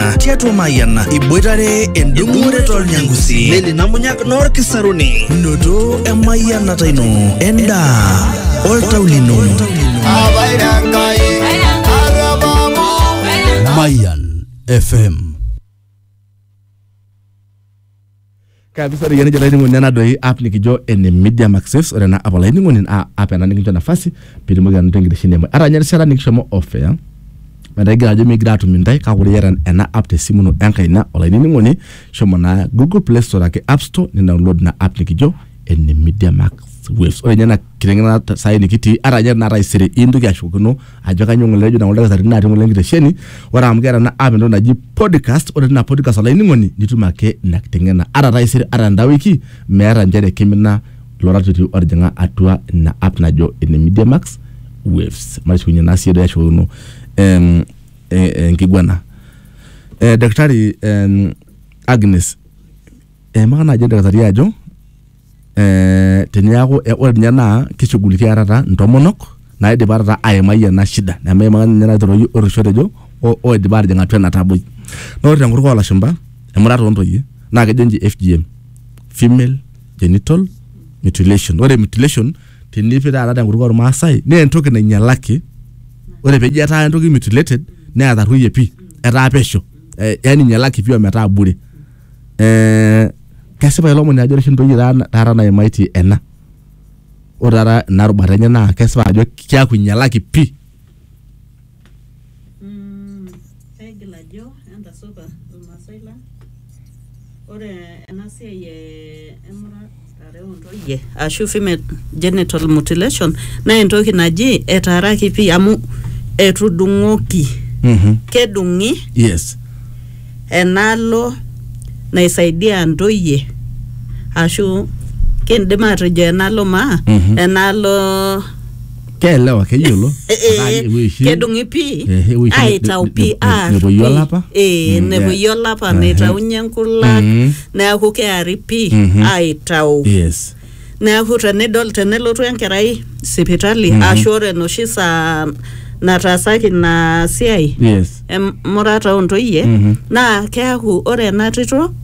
Mayiana tiatua Mayiana iboitare endung'ore tolnyangusi neli namunyak noorkisaruni noto emayianata ino endaa oltau lino Mayan FM kabisa ore yene jalaini ngoni nena doi app nikijo ene media maxes ore na app olaini ngoni a app ena nikincho nafasi pitumoki anoto enkitesheni emwe ara nye rishata nikishomo ofea metaa igira ajo migira atum intae kake ore iyata ena app tesimu ino enkaina olaini ngoni shomo naa google play store ake app store ni download ina app nikijo ene media max waves ore nye ena kitengena sai nikitii ara nye taisere intoki ashukokino ajo kanyoo ng'ole ejo nang'ole dakitarini natii ng'ole enkitesheni ore amu keeta ena app entoki naji podcast ore tina podcast olainining'oni nitum ake ina kiteng'ena ata taisere ata enda wiki meeta nchere kimina ilo ratioti otijing'a atua ina app najo ene Media Max Waves matushukunye naa siiyie doi ashukokino em, eh, eh, enkiguana eh, daktari em, Agnes eimaka naaji oldakitari ajo eh, teniaku eh, ore ninye naa kishughulikia taata ntomonok naidipa taata aimai ena shida nemeimaka ninye naitoroki orrisho otejo o- oidipa atijing atua ena taboi naa ore tenkutuk olashumpa emurata ontoyie naa kejo nji FGM female genital mutilation ore mutilation tenipi taata tenkutuk ormaasai naa entoki nainyalaki ore peji etaa entoki mutilated neatarruoyie pii etaa pesho eh, yani inyalaki pii ometaa bure eh, kesipa ilo omoni ajo ore oshi ntoyie taata taata naimaitie ena ore taata ina rubata enye naa kesipa ajo keaku inyialaki pii Mm, kaigil ajo entasupa irmaasai lang ore ena siai e emurata ntoyie ashu female genital mutilation naa entoki naji etaaraki pii amu etudung'oki Mhm. kedung'i yes enaalo naisaidia ntoyie ashu kindim atejo enaalo maa Mhm. enaalo keelewa keyiolo eh, Ataa eh, ewueji oshi- kedung'i pii Eh, ewueji oshi ne- aitau ne- pii ne- aar nepoyie pii. olapa. Eh, Mm, nepoyie yeah. olapa Ehe. neitaunye nkulak Mhm. neaku kearipi Mhm. aitau yes neaku tenidol tenelotu enkerai sipitali Mhm. ashu ore enoshi saa nataasaki ina siai yes emurata ontoyie Mhm. naa keaku ore ena tito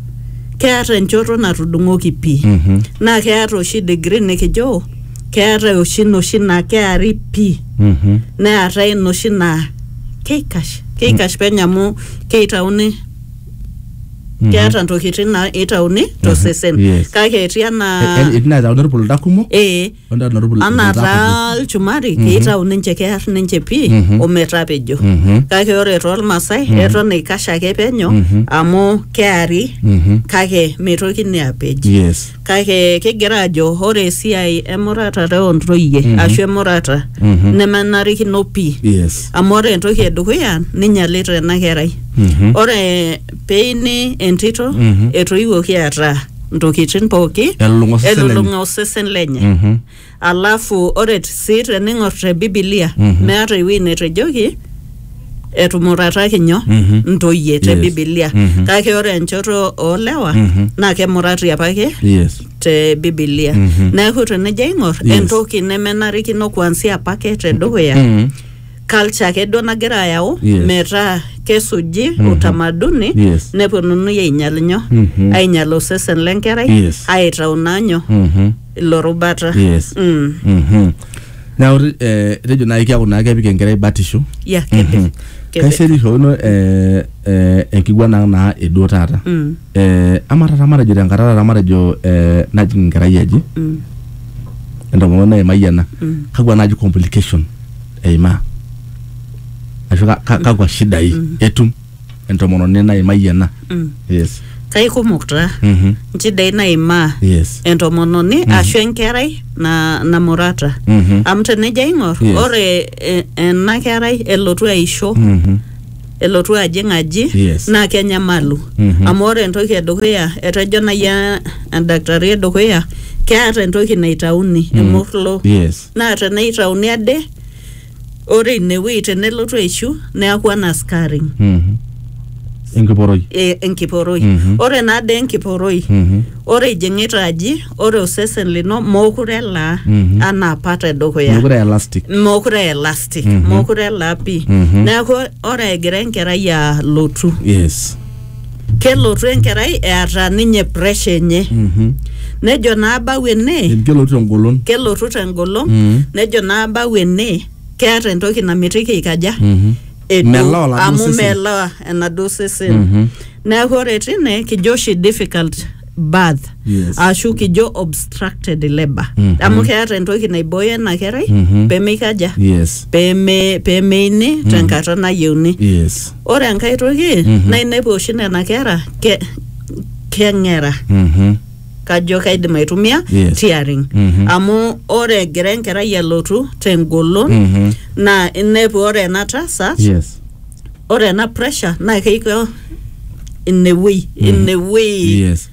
keata enchoto natudung'oki pii Mhm. naa keata oshi degree nikijo keata oshi noshi naa keari pii Mhm. neatae noshi naa keikash keikash penyo amu keitauni keeta ntokitin naitauni tosesen Yes. kake etii anaa Eh, etii naitauni irpulda kumok ee ontauni irpul- anaa irpulda taa ilchumari keitau ninche kear ninche pii ometapejo Mhm. kake ore toolmaasai eton eikash ake penyo amu keari kake meitokini apej kutiti. yes kake kigira ajo ore esiai emuratare ontoyie Mhm. ashu emurata Mhm. nemenarikino pii yes amu ore entoki edukuya ninyalita ena kerai Mhm. ore peini entito Mhm. etoiwuoki eeta ntokitin pooki Elulung'a osesen lenye. elulung'a osesen lenye Mhm. Alafu ore t- sii tening'or te Bibilia Mhm. meata ewueji netejoki etumurataki nyoo Mhm. ntoyie te Yes. Bibilia Mhm. kake ore enchoto oolewa Mhm. naa kemurati apake yes te Bibilia Mhm. neeku tenijo aing'or Yes. entoki nemenarikino kuansia apake te dukuya Mhm. culture ake duo nagira ayau Yes. metaa kesuji Mhm. utamaduni Yes. neponunui ainyal nyoo Mhm. ainyal osesen lenkerai Yes. aitau naa nyoo Mhm. ilo rubata yes mm. Mhm. neeku te- eh, etejo naaji keeku naa kepik enkerai batisho ya kepe Mhm. kepe kaisirishokino eh, eh, enkiguan ang naa eduo taata Mm. eh, ama taata matejo tenkata taata matejo eh, najing enkerai aji Mm. entomononi naimai ena Mm. kakwa naaji complication eimaa ashu ka- ka- kakwa shidai etum entomononi naimayie ena Mm. yes kaikumok taa Mhm. nchidai naimaa yes entomononi ashu enkerai na, namurata Mhm. amu tenijo aing'or Yes. ore e, ena kerai elotu aisho Mhm. elotu ajing aji Yes. naa kenyamalu Mhm. amu ore entoki edukuya etejo nai e- endakitari edukuya keeta entoki naitauni emurlo yes naa teneitauni ade ore inewueji tenelotu aishu neaku ana scarring Mhm. enkiporoi e- enkiporoi Mhm. ore naa dee enkiporoi Mhm. ore ijing'ita aji ore osesen lino mookure elaa Mhm. anaa apa tedukuya mekure aa elastic mokure elastic Mhm. mokure elaa pii Mhm. neeku ore egira enkerai alotu yes kelotu enkerai eata ninye pressure enye Mhm. nejo naa bau ene Eji kelotu tengolon. kelotu tengolon Mm. nejo naa bau ene keata entoki namitiki ikaja Mhm. edu Melewa oladuo amu sesen. melewa enaduo sesen Mhm. neeku ore tine kijo oshi difficult birth Yes. ashu kijo obstructed labor Mhm. amu keeta entoki naibooyo ena kerai Mhm. pemeikaja yes peme pemeini tenkata nayieuni yes ore enkae toki Mhm. naa inepu oshi nena kera ke, keng'era Mhm. kajo kaidim aitumia Yes. tearing Mhm. amu ore egira enkerai alotu tengolon Mhm. naa inepu ore ena tasat yes ore ena pressure naa keiko inewuei inewuei yes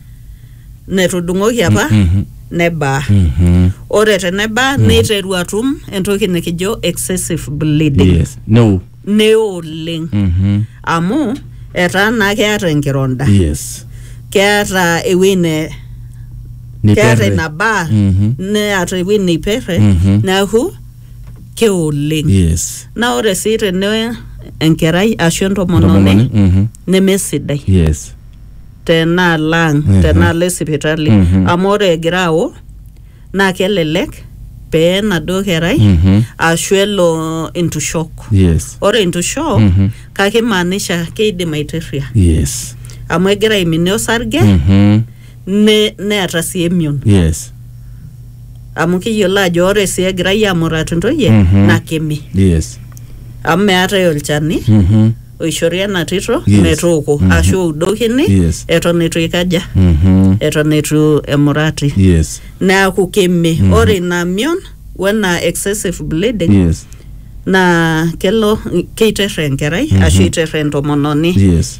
netudung'oki apa Mhm. nebaa Mhm. ore tenebaa neiteru atum entoki nikijo excessive bleeding yes no neo oleng Mhm. amu etaa naa keeta enkironda yes keeta ewuei ne keeta Niperre. ina baa Mhm. neeta ewuei neiperre Mhm. neaku keoleng yes naa ore sii tene enkerai ashu entomononi Entomononi, mhm. nemesidai yes tenaalo ang Mhm. tenaalo esipitali Mhm. amu ore egira ao naa kelelek pee enaduo kerai Mhm. ashu elo intushok yes ore intushok Mhm. kake imaanisha keidim aiterria yes amu egira aiminie osarge Mhm. ne- neeta sii emion yes amu kiyiolo ajo ore sii egirai aamuratu ntoyie Mhm. naa kemi yes amu meetae olchani Mhm. oishori ena tito Yes. metooko Mhm. ashu oudokini Yes. eton eitu ikaja Mhm. eton eitu emurati yes neaku kemi ore ina mion wena excessive bleeding yes naa kelo keiter enkerai ashu eiter entomononi yes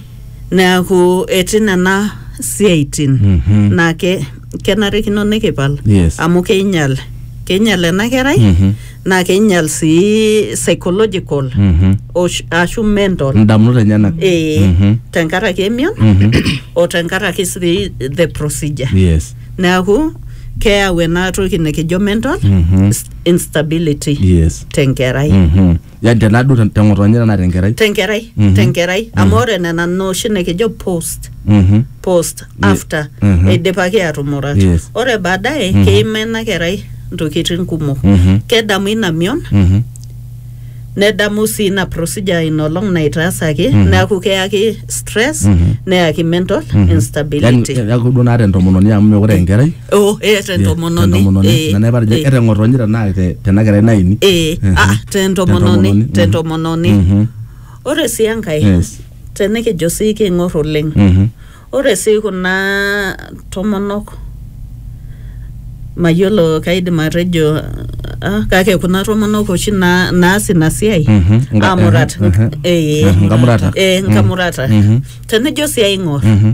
neaku etii nena siaitin Mhm. naa ke, kenarikino nikipal Yes. amu keinyal keinyal ena kerai Mhm. naa keinyal sii psychological Mhm. osh- ashu mental ndamunot enyenak ee Mhm. tenkaraki emion Mhm. o tenkaraki sii the procedure yes neaku keyau ena toki nikijo mental Mhm. instability yes tenkerai Mhm. yani tenaduo te- teng'otonye tenaa tenkerai tenkerai Mhm. tenkerai amu ore nena nooshi nikijo post Mhm. post Ye- after Mhm. eidipaki aatumurat Yes. ore baadaye Mhm. keima ina kerai ntokitin kumok Mhm. kedamu ina mion Mhm. nedamu sii ina procedure ina olong naitaasaki Mhm. neeku keyaki stress Mhm. neyaki mental Mhm. instability Yani, neeku duo naata entomononi amu mekure enkerai oh eh tentomononi tentomononi eh nana epatejo eh, eteng'otonye tenaa te- tena kerai naini eh Mhm. ah tentomononi mhm. tentomononi Mhm. ore sii enkae Yes. tenikijo sii king'or oleng Mhm. ore sii kuna tomonok mayiolo kaidim atejo ah, kake kuna tomonok oshi na- naas ina siai Mhm. Nga- amurat mhm, mhm. eh, Mhm, nkamurata. eh, nkamurata Mhm. tenijo sii aing'or Mhm.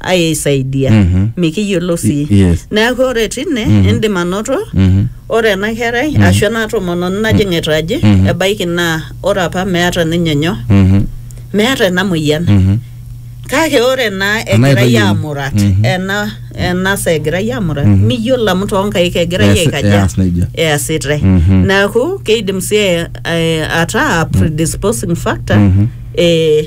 aisaidia Mhm. mikiyiolo sii Y- yes. neeku ore tine Mhm. indim anoto Mhm. ore ena kerai ashu ena tomononi najing'ita aji Mhm. ebaiki naa ore apa meeta ninye nyoo Mhm. meeta ena moyian Mhm. kake ore naa Ena egirai aitayiolo. amurat Mhm. ena ena saa egirai amurat Mhm. miyiolo amu toonkaik egirai Eas- aikaja eas nejia. easitae Mhm. neeku keidim sii eh, ataa predisposing factor Mhm. eh,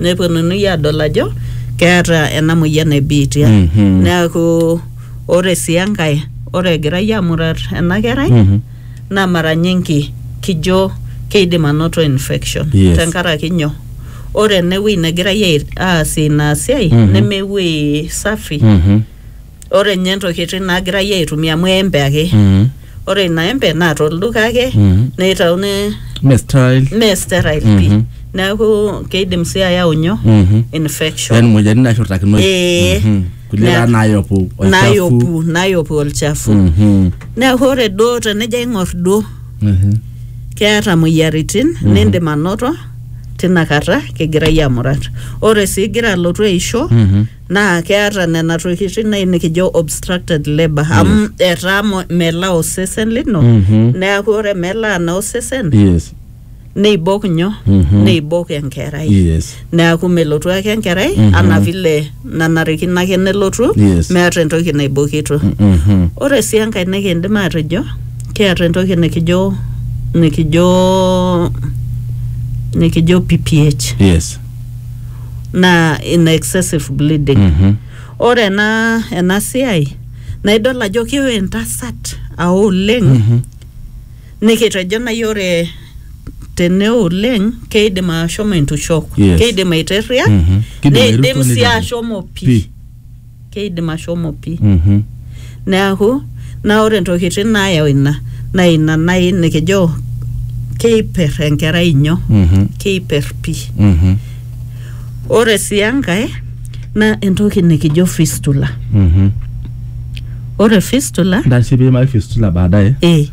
neponunui adol ajo keeta ena moyian e biitia Mhm. neaku ore sii enkae ore egirai amurat ena kerai Mhm. naa mara nyingi kijo keidim anoto infection Yes. tenkaraki nyoo ore enewueji negirai ai- aasie ina siai Mhm. nemewuei safi Mhm. ore nye ntokitin nagirai aitumia amu embe ake Mm. ore ina embe naa tolduka ake Mm. neitauni Me style. mee sterile pii Mhm. neeku keidim sii ayau nyoo Mhm. infection Yaani moyiaritin nashurtakinoi. Ee. Mhm. Kulie Na- taa naayopu olchafu. nayopu nayopu olchafu Mhm. neeku ore duo tenijo aing'or duo Mhm. keeta moyiaritin nindim anoto tinakata kigirai amurat ore sii igira alotu aisho Mhm. naa keata nena tokitin nai nikijo obstructed labour amu etaa mo- melaa osesen lino Mhm. neaku ore melaa naa osesen yes neibok nyoo Mhm. neibok enkerai yes neaku melotu ake enkerai Mhm. anaa vile nanarikino ake nelotu Yes. meata entoki naibokito Mhm. ore sii enkae nikindim atejo kiata entoki nikijo nikijo nikijo pph yes naa ina excessive bleeding Mhm. ore ena ena siai naa idol ajo kewo entasat ao oleng Mhm. nikitejo nai ore teneo oleng keidim ashomo entushok Yes. keidim aiterria Mhm. Kidim neidim airuto sii nejo- ashomo pii Pii. keidim ashomo pii Mhm. neaku naa ore ntokitin naayau ina naa ina nai nikijo keiper enkerai inyo Mhm. keiper pii Mhm. ore sii enkae naa entoki nikijo fistula Mhm. ore fistula Ntasho pee iimaki fistula baadaye. eh,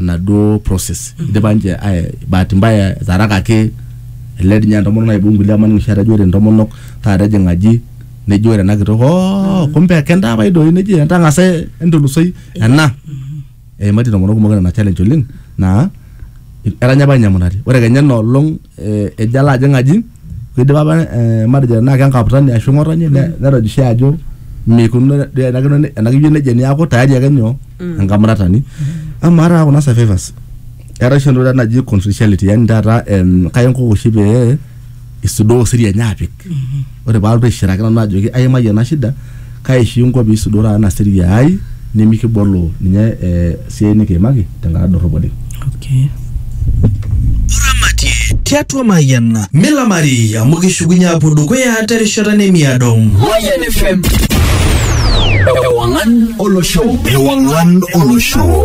enaduo process mm -hmm. idipa nche bahati mbaya etarakaki ele dii ninye entomonok naibung nkulie amu aning oshi etejo ore ntomonok taata ejing aji neji ore ena kitok oo kumbe kentapai doi neji entang'asa entulusoi ena eimaitie ntomonok kumok nena challenge oleng naa etanya apa ninye emunati ore kenya ina olong eh, ejo alo ajing aji Kidim apa eh, matejo tenaa kenkaputani ashu ng'otonye ne- netojishe ajo meikununo duo enakino ne- enakijo nejia niaku tayari ake nyoo enkamuratani amaa taata kuna survivors eetae oshi entoki taata naji confidentiality yani taata em, kaya enkuku oshi pee isudoo siri enye apik ore paalotu aishiraki nanu ajoki aimayie ena shida kaishingo pee isudoraa ana serie ai nimikibolo ninye eh, siai nikiimaki tenkata dorrop oleng. Okay. tiatua Mayian milamari amu kishukunye apuo dukuya terishata nemiado. Mayian FM. Ewangan Olosho. Ewangan Olosho.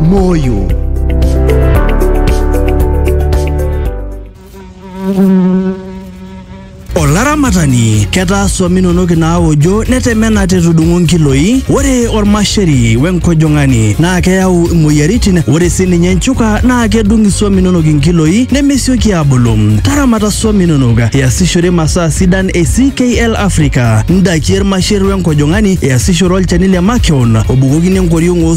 Moyo. Olaramatani ketaa swam inonok inaawojo netemena tetudung'o nkiloi. Ore ormasheri wenkojong'ani naa keyau imoyiaritin. Ore sininye nchuka naa kedung iswam inonok inkiloi nemesioki aabulu. Taramata swam inonok iasishore masaa sidan e CKL Africa. Ndakie irmasher wenkojong'ani iasishore olchani le makeon obukokini enkoriong oo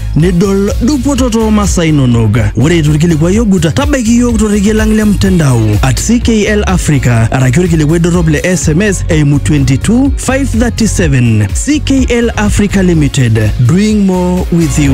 nidol dupoto too masaa inonok. Ore eitu ilkilikuai ogut, tabaiki iyiook torrekie lang le mtandao at CKL Africa araki olkilikuai dorrop le SMS eimu 22537. CKL Africa Limited, doing more with you.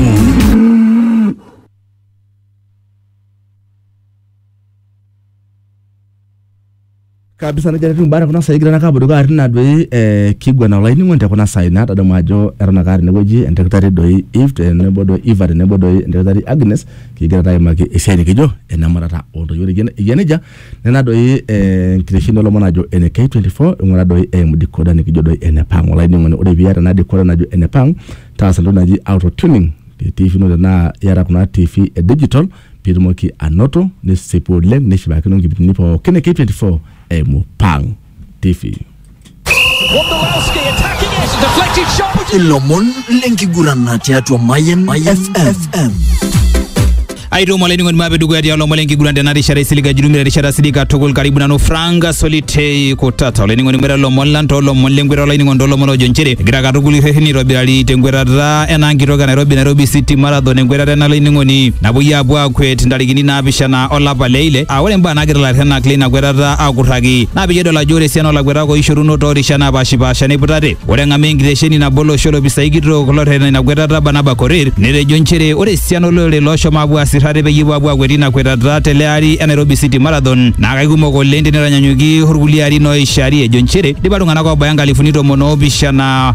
kabisa nejia etiu imbaa tekuna saai kigira naake aapuo dukuya tina doi eh, kiguana olainining'oni tekuna saai natadamu ajo eton ake atii inewueji endakitari doi Eve tenebo doi Eva tenebo doi endakitari Agnes kigira taa aimaki esiai nikijo enemuratata ontoyie ore eyia- eyia nejia nena doi eh, enkitesheni olomon ajo ene K24 ing'ura doi eimu decoder nikijo doi enepang olainining'oni ore piata ena decoder najo enepang taasa entoki naji auto tuning te TV ino tenaa iyata kuna TV e digital Pitumoki anoto nisipu oleng nishipakino nkipindini pookin e K24 eimu Pang TV. Wondolowski attacking it, deflected shot. which is ilomon lenkigurana tiatua Mayan FM. aituum olainining'oni maape dukuya tialo lomon lenkiguran tena rishata isiliga jurumira erishata sidai katukul karibu nanu frank solitei kutata olainining'oni ng'weta lomon lang too lomon leng'weta olainining'oni too lomon loojo nchere egira katukul irrereni aitobirari teng'wetata enaa enkitok e Nairobi Nairobi City Marathon enkwetata ena laining'oni napuoi aapuo aakwet ntarikini naapishana olapa le ile aa ore imbaa naagira ilarrhenak leina kwetata aakurraki naa peyie edol ajo ore esiana oolakwetak ooishoruno toorishat naapaashipaasha neiputate. Ore eng'amaa enkitesheni nabo olosho olopisai kitok lorreten ina kwetata Barnaba Korir netejo nchere ore esiana olorere looshomo aapuo aasir ate peyie epuo aapuo aakwet ina kwetata tele ari e Nairobi City Marathon naa kaikumok oleng tenitanyanyuki orkulie arin ooishari ejo nchere eidipa iltung'anak oobaya nkalifuni tomon oopishana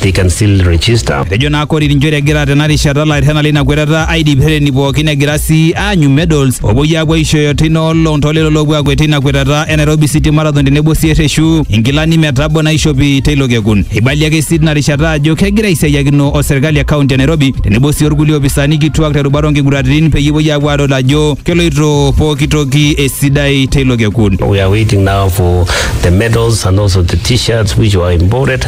they can still register. Etejo naa Korir njere egira tena rishata ilairrena leina kwetata aidip rreteni pookin egira sii aanyu medals oopuoi aapuo aishooyo teina olong toolelo loopuo aakwet teina kwetata e Nairobi City Marathon tenebo sii erreshu inkilani metabo naishopi teilo kekun. Eibalie ake sii tina rishata ajo kegira aisiayiakino o serkali e kaunti e Nairobi tenebo sii olkulie opisani kituak terubata oonkiguraritin peyie epuoi aapuo aadol ajo keloito pooki toki esidai teilo kekun. We are waiting now for the medals and also the t-shirts which were imported.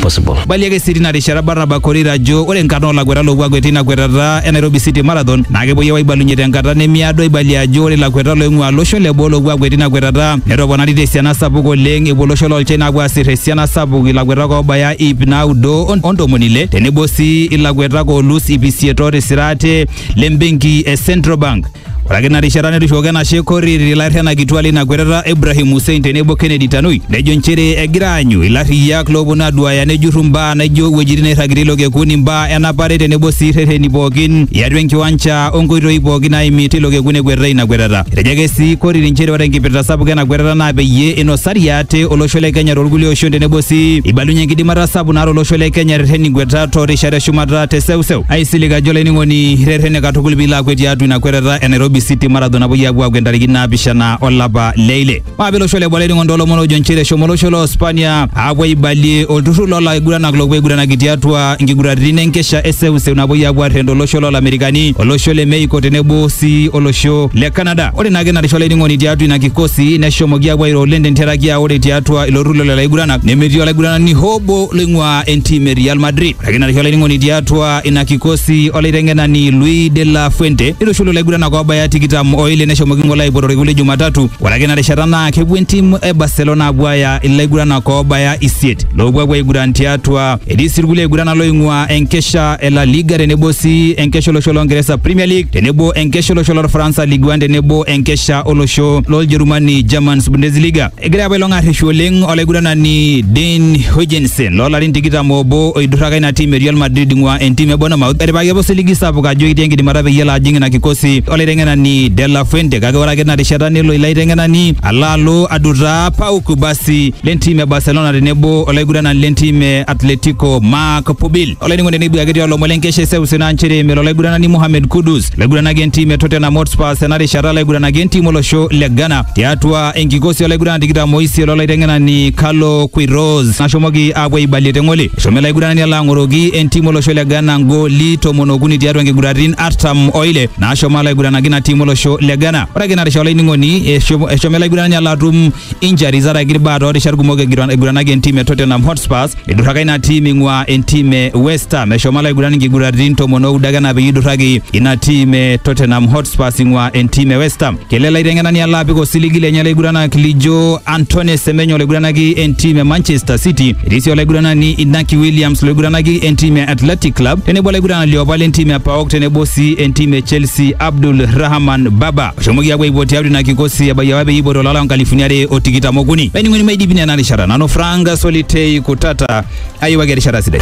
possible. Eibalie ake sii tina rishata Barnaba Korir ajo ore nkarn oo lakuetak loopuo akwet teina kwetata e Nairobi City Marathon naa kepuoi aapuo aibalunye tenkata nemiado eibalie ajo ore lakuetak looing'uaa losho le boo loopuo akwet teina kwetata netoponari te siana sapuk oleng epuo olosho loo China aapuo aasir esiana sapuk ilakuetak oobaya iip naudo o ntomoni ile tenebo sii ilakuetak oolus iip isiet ootisira ate le mbenki e Central Bank. Ore ake ina rishata netushukoki enashe Korir ilairrianak kituak leina kwetata Ibrahim Hussein tenebo Kennedy Tanui nejo nchere egira aanyu ilarriyiak looponu aduaaya nejurru mbaa naijo iwuejitin nairragirie ilo kekun, imbaa enapare tenebo sii rreteni pookin iatua enkiwancha o nkoitoi pookin naaimi teilo kekun ekwetitae ina kwetata. Etejo ake sii Korir nchere ore enkipirta sapuk ena kwetata naa peyie inosari ate olosho le Kenya toolkulie oshon tenebo sii eibalunyie enkidimata sapuk naata olosho le Kenya erreten inkwetat too rishat e shumata te seuseu. Aisilig ajo olainining'oni irretene katukul piilo akwet tiatua ina kwetata e Nairobi City Marathon napuoi apuo akwet ntarikini naapishana olapa le ile. Maape losho le Bole ning'ondo lomon ojo nchere eshomo olosho lo Spania apuo aibalie olturrur loo laiguranak loopuo aiguranaki tiatua nkiguraritin enkesha e seuseu napuoi apuo arrend olosho loo Lamerikani, olosho le Mexico tenebo sii olosho le Canada. Ore naake narisho olainining'oni tiatua ina kikosi neshomoki apuo airo oleng tentiaraki aa ore tiatua ilo turrur lelo aiguranak nemetii olaiguranani hoo obo loing'uaa entim e Real Madrid. Ore ake narisho olainining'oni tiatua ina kikosi olaiteng'enani Luis de la Fuente neitushulu laiguranak oobaya tikitam oile neshomoki ng'ole aipoto orkekun le Jumatatu. Ore ake ina rishata naa kepuo entim e Barcelona apuo aaya ilaiguranak oobaya isiet loopuo apuo aiguran tiatua. Etii sii irkulie aiguranak looing'ua enkesha e La Liga tenebo sii enkesha olosho loo Ngeresa Premier League tenebo enkesha olosho lorfaransa Ligue 1 tenebo enkesha olosho loljerumani Germans Bundesliga. Egira apa ilo ng'arreshu oleng olaiguranani Dean Huijsen loolarin tikitam obo oidurraka ina tim e Real Madrid ing'ua entim e Bournemouth etipikaki apa osiligi sapuk ajo etii enkidimata peyie elo ajing ina kikosi olaiteng'enani De La Fuente kake ore ake tina rishata nelo ilo aiteng'enani alo alo adutaa Pau Kubasi lentim e Barcelona tenebo olaiguranani lentim e Atletico Marc Pubil. olainining'oni nebuaki tiolomon lenkesha eseuseu naa nchere melo olaiguranani Mohamed Kudus laiguranaki entim e Tottenham Hotspur tena rishata laiguranaki entim olosho le Ghana tiatua enkikosi olaiguranani tikitam oisiet lolaiteng'enani Carlo Queiroz nashomoki aapuo aibalie te ng'ole. Eshomo ele aiguranani alo ang'oroki entim olosho le Ghana ngooli tomon okuni tiatua nkiguratin artam o ile naashomo alaiguranaki ina tim olosho le Ghana. Ore ake ina rishata olainining'oni eshomo ele aiguranani alo atum injuries araki irbaa toorishat kumok egiran- eiguranaki entim e Tottenham Hotspurs idurraka ina tim ing'ua entim e West Ham eshomo alaiguran inkiguraritin tomon oudo ake ena peyie idurraki ina tim e Tottenham Hotspurs ing'ua entim e West Ham kele laiteng'enani alo apik osiligi lenye laiguranak lijo Antoine Semenyo olaiguranaki entim e Manchester City etii sii olaiguranani Inaki Williams loiguranaki entim e Athletic Club tenebo olaiguranani liopa lentim e PAOK tenebo sii entim e Chelsea Abdul Rahman Baba oshomoki apuo aipuo tiatua ina kikosi ebaiki apa peyie eipoto lala nkalifuni are o tikitam okuni laining'oni maidipi nena rishata nanu Frank Solitei Kutata ayiewaki erishata sidai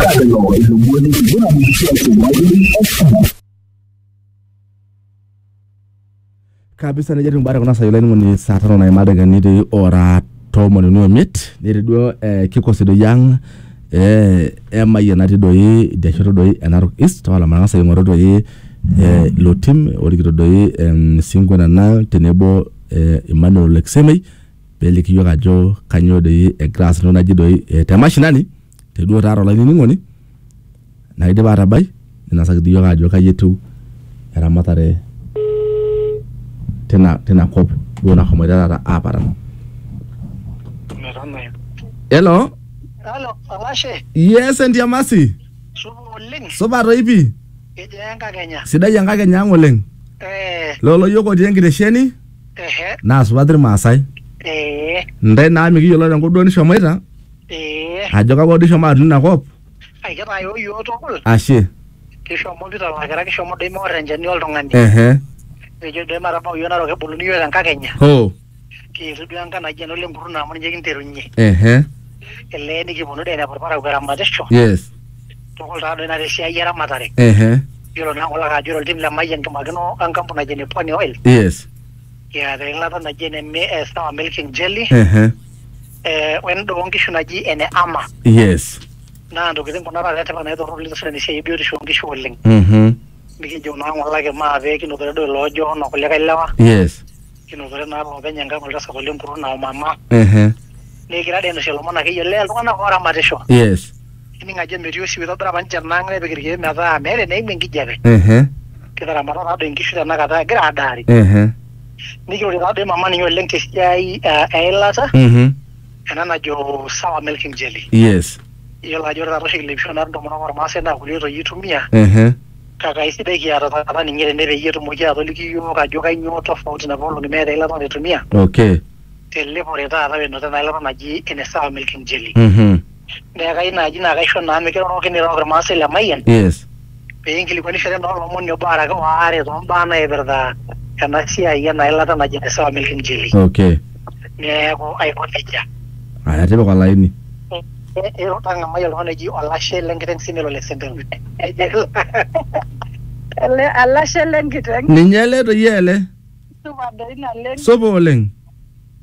kabisa nejia etiu imbaa tekuna saai olainining'oni saa tano naima ildakikani ora tomoni uni omiet netii duo eh, kikosi doi ang eh, emayian natii doi idia shoto doi e Narok East tapala matang'asa aing'oru doi eh, ilo tim orikito doi em, Singo Nanang tenebo eh, Emmanuel Leksemei peliki iyiok ajo kanyoo doi egira aas entoki naji doi eh, te mashinani Te duo taata olainining'oni naidipa aatabai ninasaki dii iyiook aajo kai etiu eramatare tina tina kop duo nashomoita taata aaparan. Metanayu. Hello, Halo, Olashe, yes Entiamasi, supa oleng. supa toi pii, Kejaa enkakenya? sidai enkakenya ang' oleng. Eh, Lolo iyiook otii enkitesheni ehe, naa supat Ilmaasai. eh, Ntae naa mikiyiolo tenkop duo nishomoita Ee, ajo kapa duo ishomo aton ina kop aikitayoo iyiook tukul. ashe Kishomo Peter Olakira, kishomo doi meor enchani oltung'ani. ehe Nikijo doi matabau iyiook Narok eboluni iyiook tenkakenya. ho Kiitu duo enkai naji ena olenkurruna amu ninye kinterunye. ehe Elee nikiponu doi ainepu irparakuo eramatisho. yes Tukul taa doi ina tesiai eramatare. ehe Yiolo naa kulo ajo ore oltim le Mayian kimakino enkampuni naji ene Pwani Oil. yes Kiata eilata naji ene mi- eh, sour milk and jelly Ehe. eh, we endaa oonkishu naji ene ama Yes. naa ntokitin kuna taata etipat naitorrolita osesen esiai ebiotisho oonkishu oleng Mhm. mikijo naa ng'olaki maa pee kinotore duo iloojo ono kulikae lewa Yes. kinotore naa loopeny enkang oltasat ole nkuruna omama Ehe. nikira dee ainosie ilomon akeyie lee iltung'anak oramatisho Yes. ining ajo metii osiwuo itobira apa ninche ena ang nepik irkeek metaa meeta eneimu enkijape ehe kitaramata taadoi inkishu tenakata egira adaari ehe nikirorie taadoi mama ninye oleng tesiai eh, eilata mhm ena najo sawa milking jelly yes iyiolo ajo ore taata oshi kilepisho naa intomonok ormaasai naa kulie oitoi itumia ehe kake aisidai kiata taata ninye tene peyie etumoki atoliki iyiok ajo kainyoo tofauti napa olong'i meeta eilata naitumia okay telepore taata wenoto ena ilata naji ene sawa milking jelly mhm Neeku kayieu naaji naa kaisho naa mikiroroki nirook irmaasai le Mayian yes pee inkilikuanishore naa olomoni obo araki waare too mbaa naipirta ena siai ena ilata naji ene Sawa Milk Injili. okay Neeku aiko nejia. aya tipika olaini Eiro tang'amai oltung'ani oji olashe le nkiteng' sii melo le sempero. Nejo ele olashe le nkiteng' ninye ele toi ele supa doi naleng'. supa oleng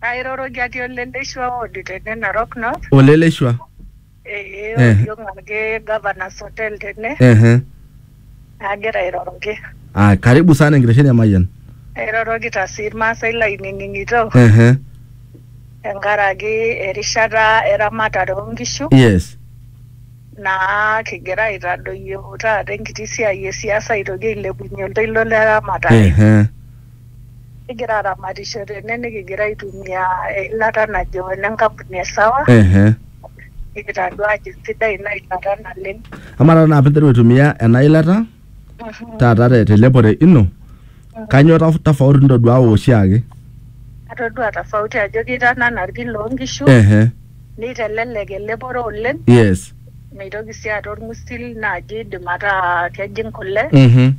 Airoroki atii ole Leshua ward tene Narok North. Ole Leshua. Ee Eh. oriong ake Governors Hotel tene Ehe. agira airoroki. Ah, karibu sana enkitesheni e Mayian. Airorokita sii Irmaasai lainining'ito Ehe. tenkaraki erishata eramatare oo nkishu Yes. naa kigira aitadoyio taata enkiti siai e siasa aitoki ailepunye oltoilo le ramatare. Ehe. kigira aramatisho tene nikigira aitumia eilata najo ene nkampuni e sawa ehe nikitadua ajo sidai ina ilata naleng amaa taata naa pinteru aitumia ena ilata taata te- telepore ino kanyoo taf- tofauti nitoduaa oshiake atodua tofauti ajo kitanana irkin loonkishu ehe nitelelek elepore oleng yes mitoki sii aata orng'usil naaji idim ataa kejing kule mhm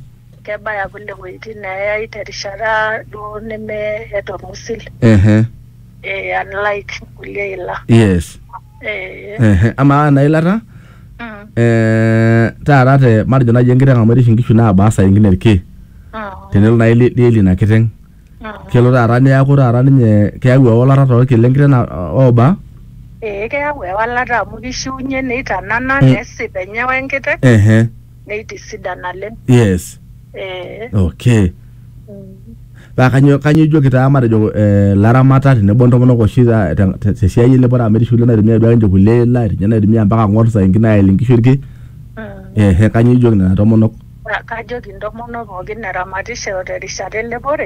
kebaya kule wuejitin neeyai terishata duo neme eeta orng'usil ehe eh, unlike kulie ila yes eh, ehe amaa ena ilata mm, eh, taata te matejo naaji enkiteng amu erish inkishu naabaa saa ingine irki mm, tenelo naaji li- lieli ina kiteng mm. kelo taata neaku taata ninye keyau ewalata torki lenkiteng na- ooba ee keyau ewalata amu kishiunye neitanana Mm. nesip enye wenkiteng ehe neitisidan naleng. Yes. Ee. Okay. Paa kanyoo kanyoo ijoki taa matejo eh ilaramatak tenebo intomonok oshi taa te te siai elepore amu etii oshi kulie naitumia duake ninche kulie ila etii ninye naitumia mpaka ing'ok saa ingine aelie inkishu irki ehe kanyoo ijoki nena tomonok? Kajoki intomonok pookin eramatisho terishata elepore.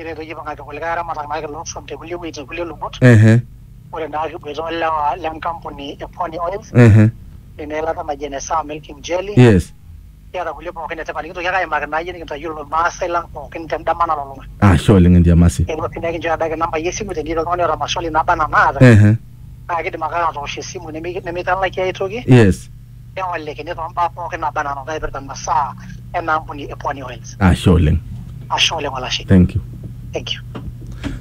ore peyie ipang'aki kulikae aramatak naake loo suam te kulie wueitin kulie lubot, ehe, ore naa kiboita o lewa le nkampuni e Pony Oil, ehe, ina ilata naji ene Sour Milking Jelly, yes, kiata kulie pookin e tipat nekintoki ake aimaki naa iyie nekintayiolo irmaasai lang' pookin te ndama nalulung'a. ashe oleng' Entiamasi. Eewuo sii nekinchooyo adake inambai e simu tenetii oltung'ani oata maswali naaba naa naata Ehe, naake iidim ake atoosh esimu nemi nemitalakie ai toki. Yes. neolikini too mbaa pooki naba anaa naipirta masaa ena ampuni e Pwani Oils. Ashe oleng. Ashe oleng olashe. Thank you. Thank you.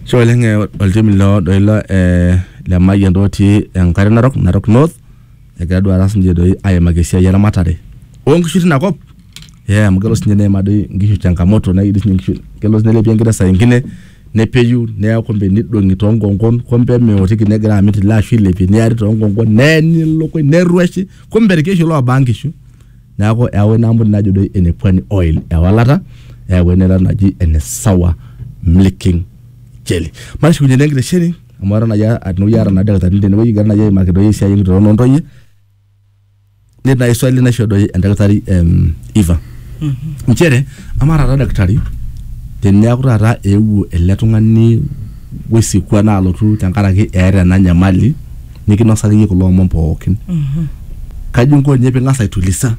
Ashe oleng eh, oltim loo doi lo eh, le Mayian doi otii enkare narok, Narok North. Egira duo taata sinche doi aimaki esiai eramatare oo nkishu tina kop. Eh, amu kelo sinye neimaa doi inkishu changamoto nailepie inkishu, kelo sinye neilepie enkiteng saa ingine nepeyu neya kumbe nidong'i toonkonkon kumbe emeotiki negira amit ile ashu ilepie neari toonkonkon neeni ilukuny nerrueshi kumbe irkeshi loobaa nkishu neeku eewa ina ampuni najo doi ene pwani oil ewalata eyau eilata naji ene sour milking jelly matushukunye naa enkitesheni amu aton nayia tenewueji aata naa ildakitarini tenewueji egira nayia aimaki doi esiai enkitoron ontoyie netii naaji swali naisho doi endakitari em, Eva nchere amaa taata daktari teniaku taata eewuo ele tung'ani wesikwa naa alotu tenkaraki eeta ena nyamali nikinosaki iyie kulo omon pookin kaji inko ninye ping'as aitulisa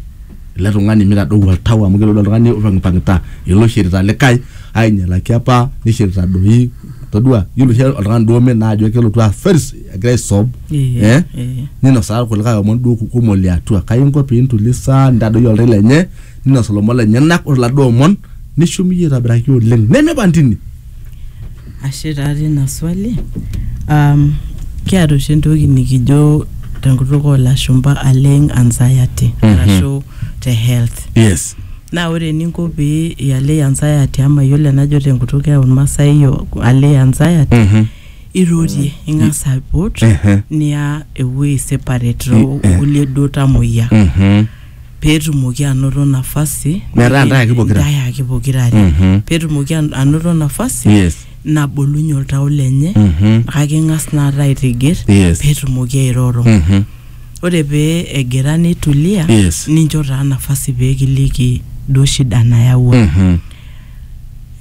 ele tung'ani mitadou oltau amu kelo doi oltung'ani opang'ipang'ita ilo oishirita likae ainyialaki apa nishirita doi todua yiolo oshi oltung'ani duo omen naa ajo kelotu aa first egira aisob Eh, eh, eh. ninosaa irkulikae omon duo kumok liatua kai inko piintulisa nitadoyio oltau lenye ninos ilomon lenyenak ore iladuo omon nishum iyie aitobiraki oleng nemiba ntini ashe taa tina swali um, kiata oshi entoki nikijo tenkutuk oolashumpa aleng anxiety Mhm. arashu te health yes Naa ore eninko pee ialei anxiety ama iyiolo enajo tenkutuk e Olmasai yo- alei anxiety Mhm. irorie ing'as aipot Ehe. niya ewuei separate too Eh, eh. kulie duo tamoyia Mhm. peetumoki anoto nafasi Metaa nipik- ntae ake pokira. ntae ake pokira are Mhm. peetumoki an- anoto nafasi Yes. nabolunye oltau lenye Mhm. kake ing'as naata aitigir Yes. peetumoki airoro Mhm. ore pee egira neitulia Yes. nincho taa nafasi pee kiliki duo shida nayawua Mhm.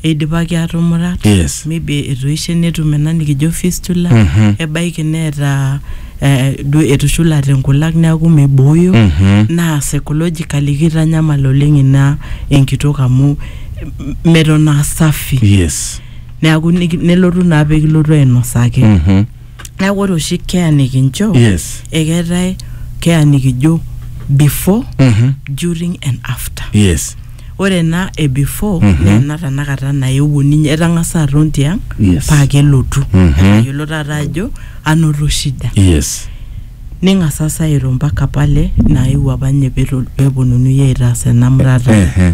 eidipaki aatumurat Yes. maybe etoishe netum ena nikijo fistula Mhm. ebaiki neeta eh, duo etushulate nkulak neeku mibooyo Mhm. naa psychologically kitanyamal oleng ina enkitok amu m- meton aa safi Yes. neeku niki- nelotu naa pee kilotu ainosaki Mhm. neeku ore oshi keya nikincho yes ekeetae keya nikijo before Mhm. during and after yes ore ena e before Mhm. naa ena tanakata naewuo ninye etang'asa aton tiang Yes. paa kelotu Mhm. etayiolo taata ajo anoto shida yes ning'asasa airo mpaka pale naewuo apa ninye peto- peponunui aitaas ena murata Ehe.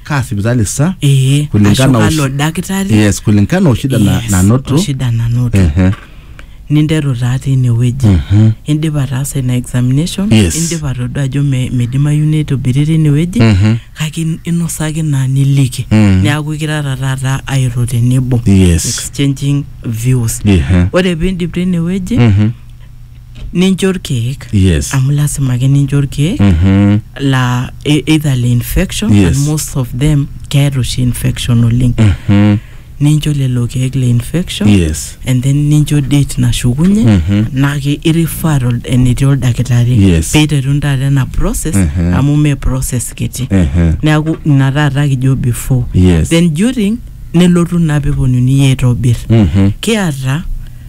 kaa sipitali sa ee ashu kulingana oshi- kalo dakitari yes kulingana oshida na, Yes, nanoto oshida nanoto Ehe. ninteru taa tinewueji Mhm. indipa ataasa ina examination Yes. indipa atodua ajo me- midimayu neitobiri tinewueji Mhm. kake in- inosaki naa niliki Mm. neaku ikirara taata airo tenebo Yes. exchanging views Ehe. ore piindip tinewueji Mhm. nincho irkeek yes amu lasima ake nincho irkeek Mhm. la e- either le infection Yes. and most of them keeta oshi infection oleng Mhm. nincho lelo keek le infection yes and then nincho date nashukunye Mhm. naa ke irifaa tol- enetii oldakitari Yes. peiteruni taata ena process Mhm. amu mee process kiti Ehe. neaku ina taata kijo before yes then during nelotu naa peponunui aitobir Mhm. kiata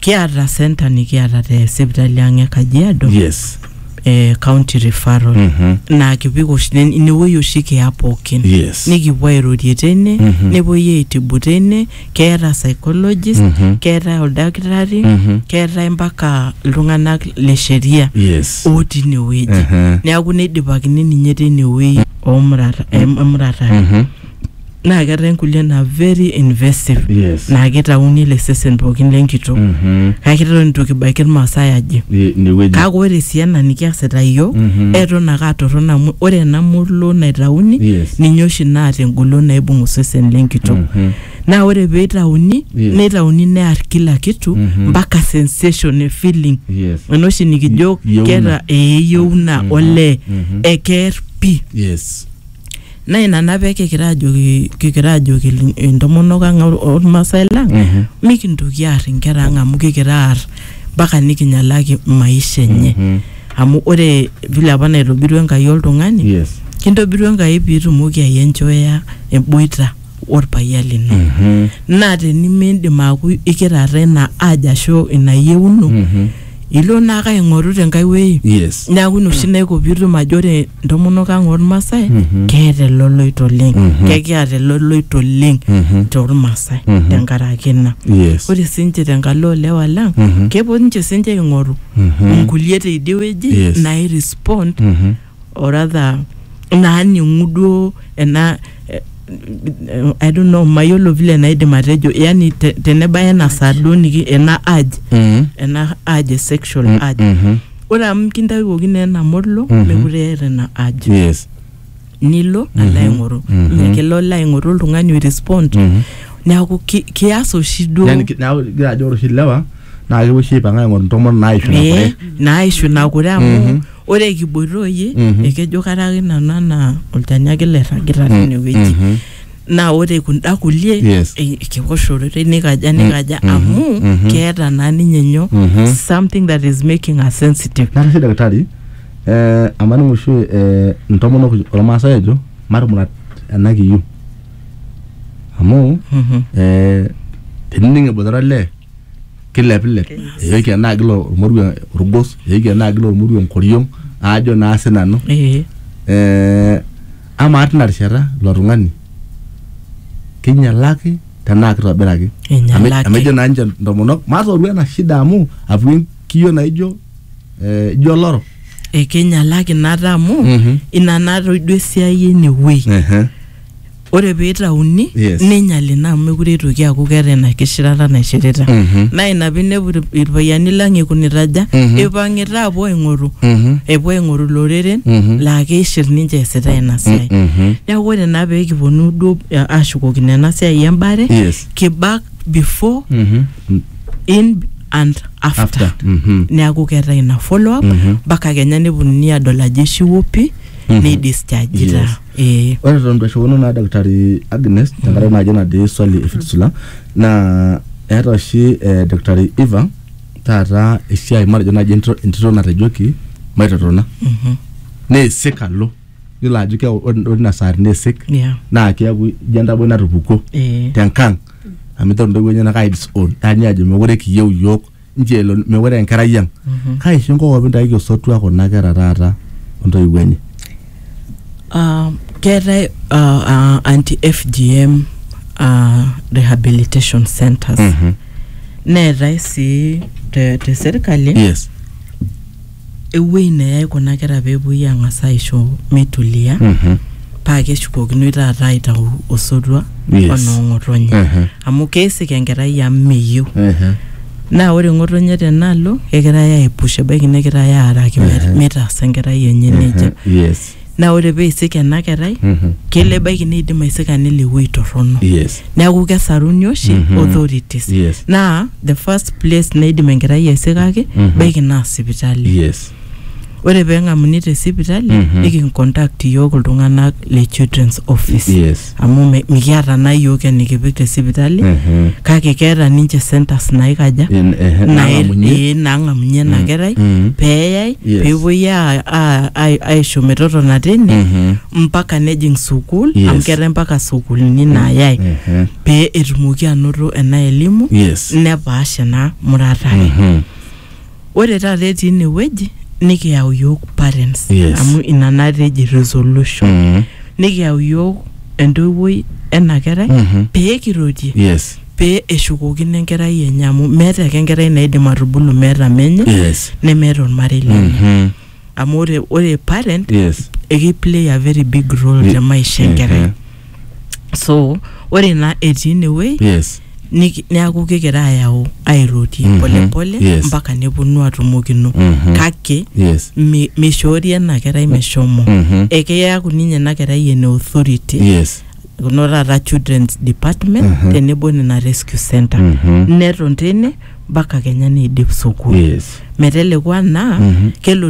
Kiata center nikiata te sipitali ang' e Kajiado yes eh, county referral Mhm. naa kipik oshi nen- inewueji oshi kiya pookin yes nikipuo airorie teine Mhm. nepuoi aitibu teine keeta psychologist Mhm. keetae oldakitari Mhm. keetae mpaka iltung'anak le sheria yes otii inewueji Mhm. neaku neidipakini ninye teinewueji omuratare Mhm. naa keetae nkulie naa very invasive Yes. naa kitauni ele sesen pookin lenkitok Mhm. kake eton itu kibaiki irmaasai aje I- inewueji kake ore sii ena nikiasita iyiook Mhm. eton ake atorrono amu ore ena molo naitauni Yes. ninye oshi naata engolon naibung osesen lenkitok Mhm. naa ore pee itauni Yes. neitauni near kila kitu Mhm. mpaka sensation e feeling yes ena oshi nikijo Yieuna. keeta eyieuna olee Mhm. ekeer pi yes naa ina naa pee kikira ajoki kikira ajoki il- intomonok ang or- ormaasai lang Mhm. mikintoki aar inkera ang amu kikira aar mpaka nikinyalaki maisha enye Mhm. amu ore vile apa naitobirua enkai oltung'ani Yes. kintobiru enkai piitumoki ayenjoya emboita orpayian lino Mhm. naa tenimiindim aaku ikirara ina aja ashu ina yieuno Mhm. ilo naake aing'oru tenkae wuei Yes. neeku ina oshi naiko piitum ajo ore intomonok ang ormasae Mhm. keeta eloloito oleng Mhm. kekiata eloloito oleng Mhm. tormasae Mhm. tenkaraki ina Yes. ore sinche tenkalo olewa lang Mhm. kepuo ninche sinche aing'oru Mhm. inkulie teidie wueji Yes. nairespond Mhm. oratha naaning'u duo ena eh, I don't know mayiolo vile naidim atejo yani te, tenebaya ena saa duo niki ena urge Mm. ena urge sexual Mm, urge mhm. ore amu kintawuoki naa ena molo Mhm. mekure eeta ina urge yes nilo Mhm. alo aing'oru Mhm. mme kelo alo aing'oru oltung'ani oirespond Mhm. neeku ki- kias oshi duo Yani ki- neeku igira ajo ore oshi ilewa naa kepuo oshi aipang'a aing'oru ntomonok naaisho Eh, naishu nakure amu Mhm. Ore kiboita oyie, Mhm. ekejo karaki nanu anaa olchani ake lairragita tine wueji. Mhm. Naa ore kunda kulie Yes. e- ekewosh ororei nikaja nikaja mhm, amu mhm. keeta naa ninye nyoo Mhm. something that is making her sensitive. Natashe daktari eh, amaning'u oshi eh, intomonok ormaasai ejo matumurat ena kiyu amu Mhm. eh, tenining eboitare olee kilepilep eyoki enaa kila ormoruo orgos eyoki enaa kila ormoruo enkoriong aajo naa sinanu Eh. eh, amaa tina rishata ilo tung'ani kinyialaki tenaa kitobiraki Einyialaki. Ame- amu ejo naa ninche intomonok matooru ena shida amu atua enkiyio naijo eh, ijo oloro ekinyialaki nata amu Mhm. ina natoiduo esiai enewuei Ehe. ore peitauni Yes. neinyal ina amu mekure eitoki aaku keeta ina kishirata naishirita Mhm. naa ina pinepu ir- irpayiani lang eikunita aja Mhm. eipang'ita apuo aing'oru Mhm. epuo aing'oru iloreren Mhm. laa keishir ninche eesita ina siai Mhm. neeku ore naa pee kiponu duo eh, ashukokino ena siai embare Yes. kibak before Mhm. in and after, After. Mhm. neeku keetae ina follow up Mhm. mpaka kenya neponunui adol ajo ishiwuo pi Mhm. neidischargita Yes. Ee. Ore eton itu airriwakino naa Daktari Agnes, tenkaraki najo natii swali e Fitsula, naa eeta oshi eh Daktari Eva taata esiai matejo naji entito natejoki maitotona. Neisik alo. Yiolo ajo keeku ore inasaa teneisik, Yeah. na keeku ijo entaboi natupukuo Ee. tenkang'. Amu iteru intoiwuo enyanak ai disown. Eya nye ajo mekure kiyieu iyiook nche elo mewore enkerai ang kaisho enkokop intaiki osotua kuna kera taata ontoiwuo enye Ah, keetae ah, ah, anti fgm ah, rehabilitation centers neetae sii te, te serkali yes ewuei neyai kuna kera peepuoi ang'as aisho meitulia Mhm. paa keshukokinoi taata aitau osotua Yes. onoo ng'otonye Mhm. amu keisik enkerai amu meyieu Mhm. naa ore ng'otonye tenaalo kegirai aipush ebaiki negirai aaraki met- mitaasa enkerai enye nejia Yes. naa ore pee eisik ena kerai kelo ebaiki neidim aisika nelo ewueji torrono yes neeku kesaruni oshi Mhm. authorities Yes. naa the first place naidim enkerai aisikaki Mhm. baiki naa sipitali yes ore peng'amuni te sipitali Mhm. nikincontact iyiook iltung'anak le children's office yes amu me- mikiata naa iyiook enikipik te sipitali Mhm. kake keeta ninche centers naikaja In- ehe, nae- nang'amunye. ee, naang'amunye ena kerai Mm. peeyai Yes. peepuoi a- a- a- aisho metotona tine Mhm. mpaka nejing sukuul Yes. amu keetae mpaka sukuulini naayai Ehe. pee etumoki anoto ena elimu Yes. nepaasha ena murata ai Mhm. Ore taata etii ine wueji nikiyau iyiook parents Yes. amu ina naata eji resolution Mm. nikiyau iyiook entoiwuoi ena kerai Mhm. pee kirorie Yes. pee eshukokino enkerai enye amu meeta ake enkerai naidim atubulu meeta menye Yes. nemeeta ormarei lenye. Mhm. amu ore ore parent yes eki play a very big role Ye- te maisha eh, enkerai eh. so ore naa etii inewuei yes niki- neaku kigira ayau airorie Mhm. polepole Yes. mpaka neponu atumokino Mhm. kake yes mi- mishoori ena kerai meshomo Mhm. ekeyaku ninye ena kerai ene authority yes kuno taata children's department Mhm. tenebo nena rescue center Mhm. neton tene mpaka kenya neidip sukul yes meteleku anaa Mhm. kelotu